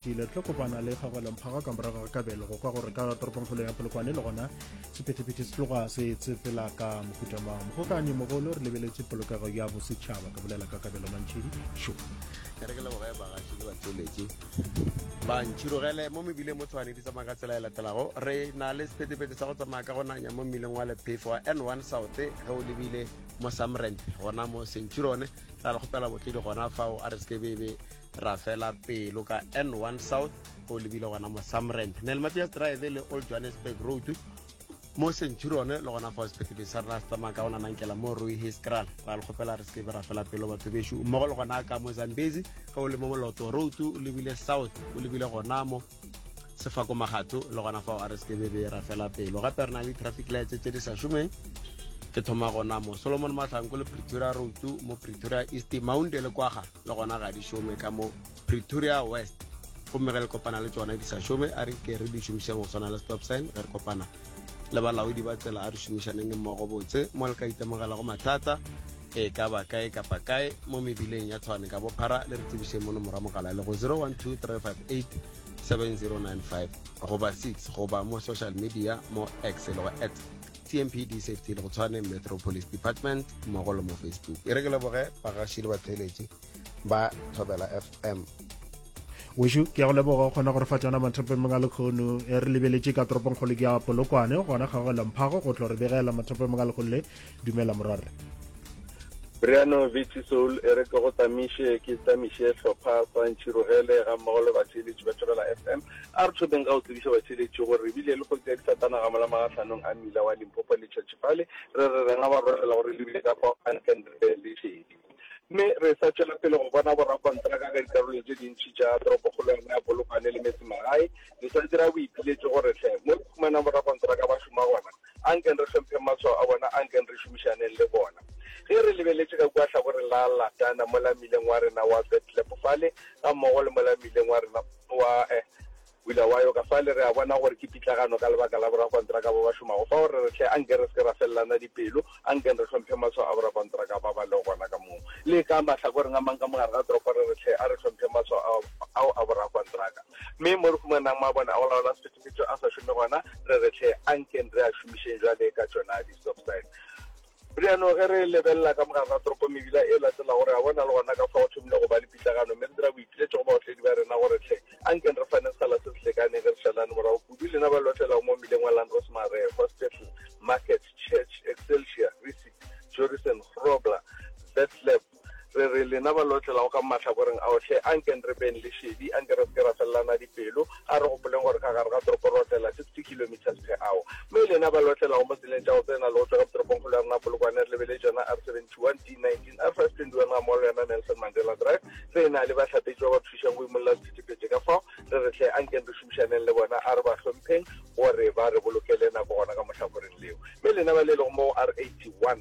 Ke ile tlo kopana le kgagwelemphaga ka morago ga kabelo go kwa gore ka toropongkgolo ya polokwane le gona sephetephete se tloga se tsefela ka mohuta mang mogokanyi mogolo re lebeletse polokego ya bosetšhaba ka bolela ka kabelo mantšhedi šo ke re ke leboge bagaši le batšweletši ba ntšhirogele mo mebileng mo tshwane di tsamaya ka tsela e latelago re na le sephetephete sa go tsamaya ka go nanya mo mmileng wa lephefo wa n one south ge o lebile mo samrent gona mo sentšhirone ra le kgopela botledi gona fao a re se ke bebe Ra fela pelo ka N1 South go lebile gona mo Samrand, Nel Matias Drive le Old Johannesburg Road mo Centurion le gona fa sepetlele sa rena se tsamaya ka ona nankela mo Rooi Hiskral. Ra le kgopela re sebe ra fela pelo batho bešo mmogo le gona ka mo Zambezi ge o le mo Moloto Road o lebile south o lebile gona mo sefako magato le gona fao a re sekebe be ra fela pelo gape re na le traffic lights tse di sa šomeng ke thoma gona mo solomon mahlanko le pretoria road mo pretoria east mounte le kwaga le gona ga di šome ka mo pretoria west gomme ge le kopana le tsona di sa šome a re ke re di šomišeng go tshwana le stop sign ge re kopana le balaodi ba tsela a re šomišaneng mmogo botse mo le ka itemogelago mathata E ka ba kae kapa kae mo mebileng ya Tshwane ka bophara le re tsebišeng mono morwa mogala le go 0123587095 goba 6 goba mo social media mo X le go at TMPD Safety le go Tshwane Metro Police Department mmogo le mo Facebook. E re ke leboge bagaši le batheeletši ba Thobela FM. wešo ke ya go leboga o kgona gore fa tsona mathopemeng a lekgono e re lebeletše ka toropongkgolo ke ya polokwane gona kgago lemphago go tlo re begela mathopemeng a lekgono le Dumela morwarre. Briano Vitsy Soul e re ke go tamiše ke tamiše hlopha sa Ntšhirogele ga mmogo le batheeletši ba Thobela FM. A re thomeng ka go tsebiša batheeletši gore re bile le kgotsi ya disatanaga mola magahlhanong a mmila wa Limpopo le Tšhatšhipale. Re re re nga ba rorela gore le bile ka kwa Ankenribe le šedi. Mme re sa tšwela pele go bona borakontraka ka dikarolong tše dintši tša toropokgolo ya rena ya Polokwane le metsemagae, le sa dira boipiletšo gore hle mo re humanang borakontraka ba šoma gona, A nkeng re hlompheng matshwao a bona, a nkeng re šomišaneng le bona. Ge re lebeletše ka kua hlakoreng la Latana, mola mmileng wa rena wa Betlep fale, gammogo le mola mmileng wa rena wa Bulawayo ka fale, re a bona gore ke pitlagano ka lebaka la borakontraka ba ba šomago fao. Re re, Hle, a nke re se ke ra felelana dipelo. A nkeng re hlomphe maswa a borakontraka ba ba lego gona ka moo le ka mahlakoreng a mang ka mo gare ga toropo, re re, Hle, a re hlomphe maswa ao a borakontraka. Mme mo re humanang mabone a go laola sephethephethe a sa šome gona, re re, Hle, a nkeng re a šomišeng bjale ka tšona di-stop sign. Bjano ge re lebelela ka mo gare ga toropo mebila e latelago, re a bona le gona ka fao go thomile go ba le pitlagano, mme re dira boipiletšo go baotledi ba rena gore, Hle, a nkeng re faneng sekgala se se lekaneng ge re šalane morago kudu, lena ba le otlelago mo mmileng wa Landros Mare, Hospital, Market, Church, Excelsia, Risit, Jorisen, Grobler, Vetlab, re re lena ba lotlelago ka mahlakoreng ao, hle anken re beng le šedi, anke re se ke ra felelana dipelo, a re gopoleng gore ka gare ga toropo re otlela 60 kilometres per hour. Mme lena ba lotlelago mo tseleng tša go tsena le go tšwa ka motoropongkgolo ya rena Polokwane, re lebeletse yona R71, D19, R521 gammogo le yona Nelson Mandela Drive, re e na le bahlapetši ba ba thušang go imolla sethethephete ka fao, Re re hle, a nkeng re šomišaneng le bona, a re ba hlompheng gore ba re bolokele nako gona ka mohlakoreng leo. Mme lena ba le lego mo R81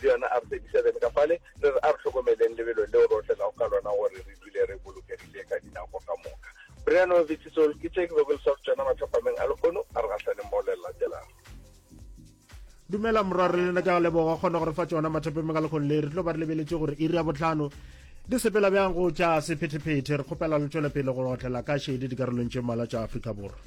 le yona R37 ka fale, re re a re hlokomeleng lebelo leo re otlelago ka lona gore re dule re bolokegile ka dinako ka moka. Bryanovitz Zol, ke tše ke bego ke le swarotšona mathapameng a lehono a re gahlaneng mo le le latelago. dumela morwa re lena ke a leboga kgona gore fa tsona mathapeng me ka lekgong le re tlo ba re lebeletse gore iri ya botlhano di sepela bjang go tša sephetephete re kgopela le tšwele pele go otlela ka šedi dikarolong tše mmala tša afrika borwa